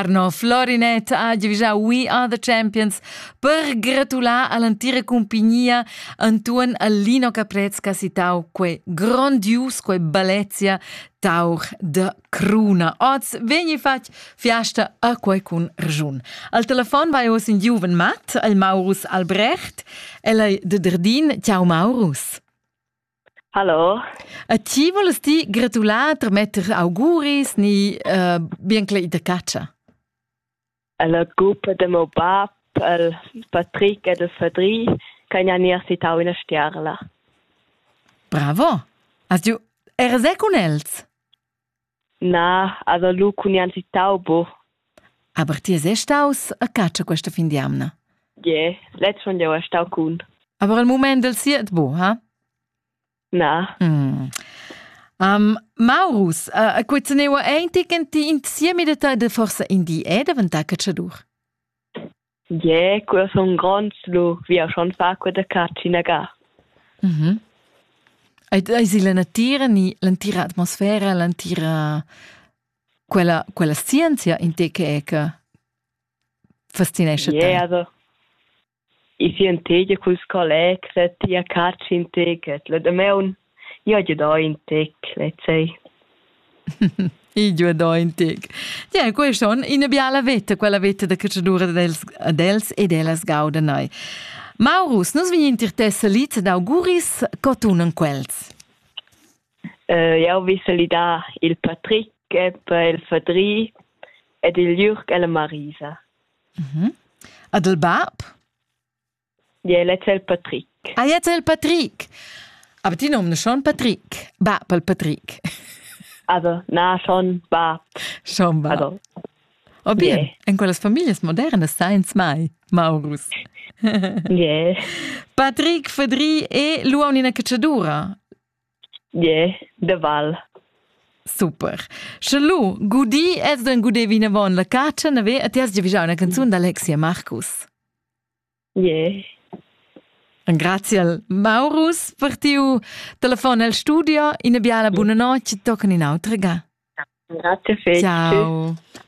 Arno Florinet ha giavüschà We Are the Champions per gratular all'antira cumpignia Antoine Allino Caprez ch'ha citau quei grondius, quei balezia tauch de cruna. Oz vegni fatg fiasta a quei cun rgiun. Al telefon vai oz in giuven mat, il Maurus Albrecht, el ei de Derdin. Ciao Maurus. Hallo. A ti voless ti gratular per metter auguris ni uh, bien che ita catscha? La gruppa de meu bab, el Patrick e de Fadri, kan ja nier citau ina stiarla. Bravo! Hast du era se con els? Na, also lu cun nianti taubo. Aber ti sei staus a catscha questa fin di amna? Ie, letz schon jeu stau cun. Aber al mument del siet bu, ha? Na. Mm. Um, Maurus, uh, a quezeneua ein ti che ti insiemi de ta de forsa in di è daventà catschadur? Gie, quei sun gronds lu via schon fa quei da catsch inaga. Mhm. Eis il la natira ni l'entira atmosfera, l'entira quella quella scienzia in te che è che fascinesce te? Yeah, also ich sehe in Tege cul collega, ti a catsch in Tege, lo da me un Io giodò in tec lezei. I giodò in tec. Tie, quei schon ina biala veta, quella veta da catschadura dels, dels e dellas gaudenai. Maurus, nus vegn intir te salit d'auguris, co tunan quels? Uh, jau vi salidar il Patrick per il Fadri ed il Jürg e la Marisa. Mm -hmm. Ad il bab? Ja, el è il Patrick. Ah, jetzt el Patrick. Aber die Namen schon Patrick. Ba, pel Patrick. Also, na, schon ba. Schon ba. Also, O bien, yeah. in quelles families modernes sainz mai, Maurus. yeah. Patrick Fedri e l'uonina cacciadura. Yeah, de Val. Super. Sche lu, gudi es den gudevi ne von la caccia, ne ve, a ti has già visau una canzun d'Alexia Marcus. Yeah. Graziel Maurus per tiu telefon el studio, ina biala buona notte, tocca in autra ga. Grazie fetch. Ciao.